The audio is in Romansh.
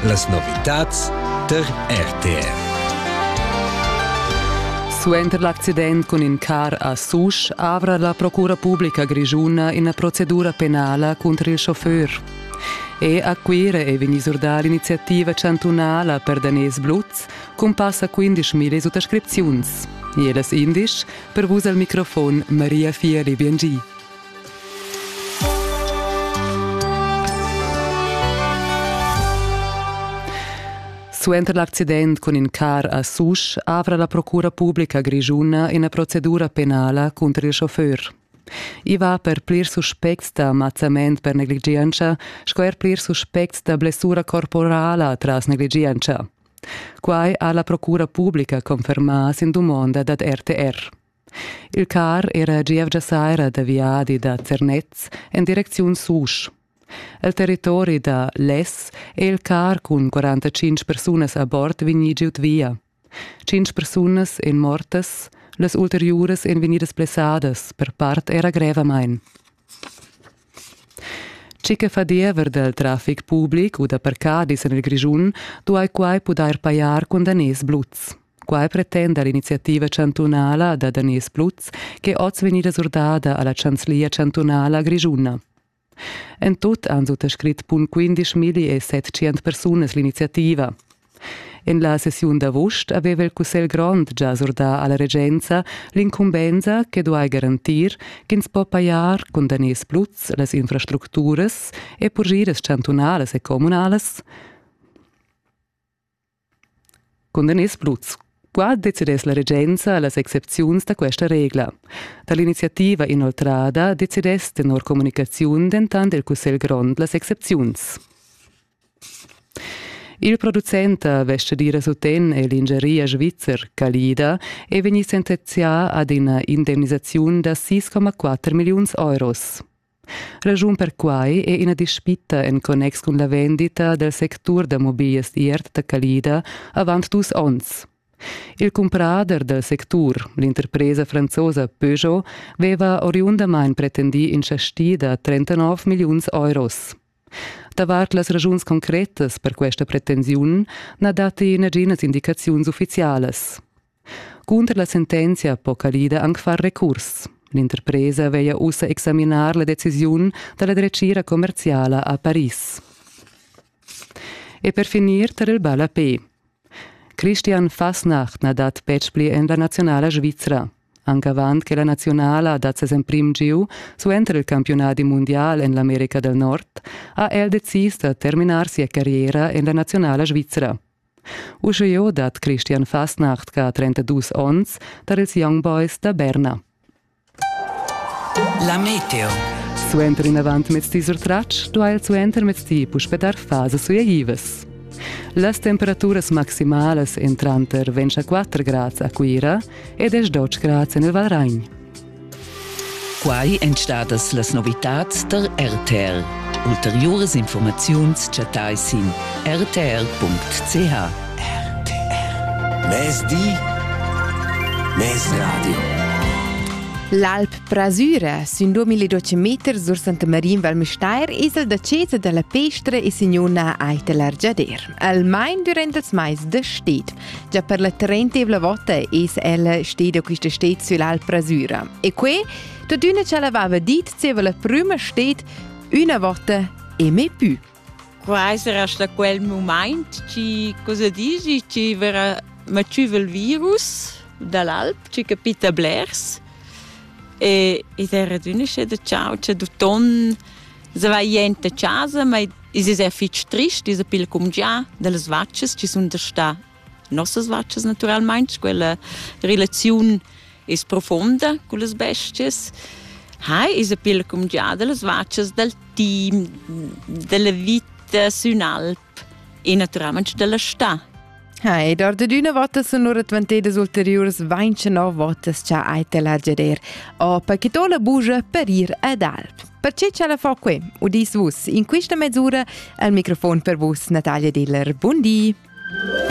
Las novitads tar RTR. Suenter l'accident cun in car a Susch avra la Procura publica grischuna ina procedura penala cunter il chauffeur. E a Cuira è vegnì surdà l'iniziativa chantunala per daners bluts cun passa 15.000 suttascripziuns. E las indisch per vus al microfon Maria Fieli Biengi. Suenter l'accident cun in car a Susch avra la Procura publica grischuna ina procedura penala cunter il chauffeur. I va per plirs suspects da mazzament per negligientscha sco er plirs suspects da blessura corporala tras negligientscha. Quai ha la Procura publica confermà sin dumonda dad RTR. Il car era gievgia saira da viadi da Zernez en direcziun Susch. El territori da Les è il car cun 45 persunas a bord vegnì giud via. Cinc persunas èn mortas, las ulteriuras èn vegnidas blessadas per part era grevamain. Tgi che fa diever dal traffic public u da parcadis en il Grischun duai quai pudair pajar cun daners bluts. Quai pretenda l'iniziativa chantunala da daners bluts ch'è oz vegnida surdada a la chanzlia chantunala grischuna. En tut han suttascrit bun 15.700 persunas l'iniziativa. En la sessiun d'avust aveva il Cussegl grond già surdà a la regenza l'incumbensa che duai garantir ch'ins po pajar cun daners bluts las infrastructuras e purgiras chantunalas e communalas. Cun daners bluts Qua decidess la regenza las excepziuns da questa regla. Da l'iniziativa inoltrada decidess tenor comunicaziun dentant il Cussegl grond las excepziuns. Il producent da vestgadira suten è l'ingeria svizzer Calida è vegnì sentenzià ad ina indemnisaziun da 6,4 milliuns euros. Ragiun per quai è ina dispita en connex cun la vendita dal sectur da mobiles iert da Calida avant dus onns. Il cumprader dal sectur, l'interpresa franzosa Peugeot, aveva oriundamain pretendì in chasti da 39 milliuns euros. Davart las razuns concretas per questa pretensiun na datti naginas indicaziuns uffizialas. Cunter la sentenzia po Calida anc far recurs. L'interpresa veglia ussa examinar la decisiun da la dretgira commerziala a Paris. E per finir tar il ballapé. Christian Fasnacht na dat betg pli en la nazionala svizra. Anc avant che la naziunala ha dat ses emprim giu suenter il campiunadi mundial en l'America del Nord ha el decis da terminar sia carriera en la naziunala svizra. Uscheo dat Christian Fastnacht che ha 32 onns tar ils Young Boys da Berna. La Meteo. Suenter inavant mezdi sur tratsch duai el suenter mezdi puspè dar fasa sui Ivas. Las temperaturas maximalas en tranter 24 grads a Cuira ed es dotschgrat sen il Valragn. Quai èn stadas las novitads tar RTL. Ulteriuras informaziuns chattai sin rtl.ch. RTL. Mezdi, Mezradio. L'Alp Prasüra sün 2012 meter sur Santa Marin Val Müstair es el da Cesa da la Pestra e signuna Aita l'Argiader. Almain durant els mais da sted. Già per la trentevla vota es ella steda quista stet süll'alpra Süra. E que, tuttüna cha l'aveva dit, zieva la prüma stet, üna vota e me pü. Qua sarà sta quel moment ci cosa dici ci verrà maciuva il virus dall'alp, ci capita blers e ed era d'una sceda ciao, c'è du ton Se va jent a casa, ma es er fich trist, es pil cumgià dellas vachas chi sun da stà. Nossas vachas natüralmaing, quella relaziun es profonda cullas bestias. Hai es pil cumgià dellas vachas, dal team, della vita sün alp. e naturalment della sta. Ha, ed or da d'üna vota sun lura dvantedas ulteriuras 29 votas cha hai te la geder. O, per che to la bugia per ir ad alp. Perché ce la fa qui, udis vus, in questa mezz'ura, al microfon per vus Natalia Diller. Buondì! Buondì.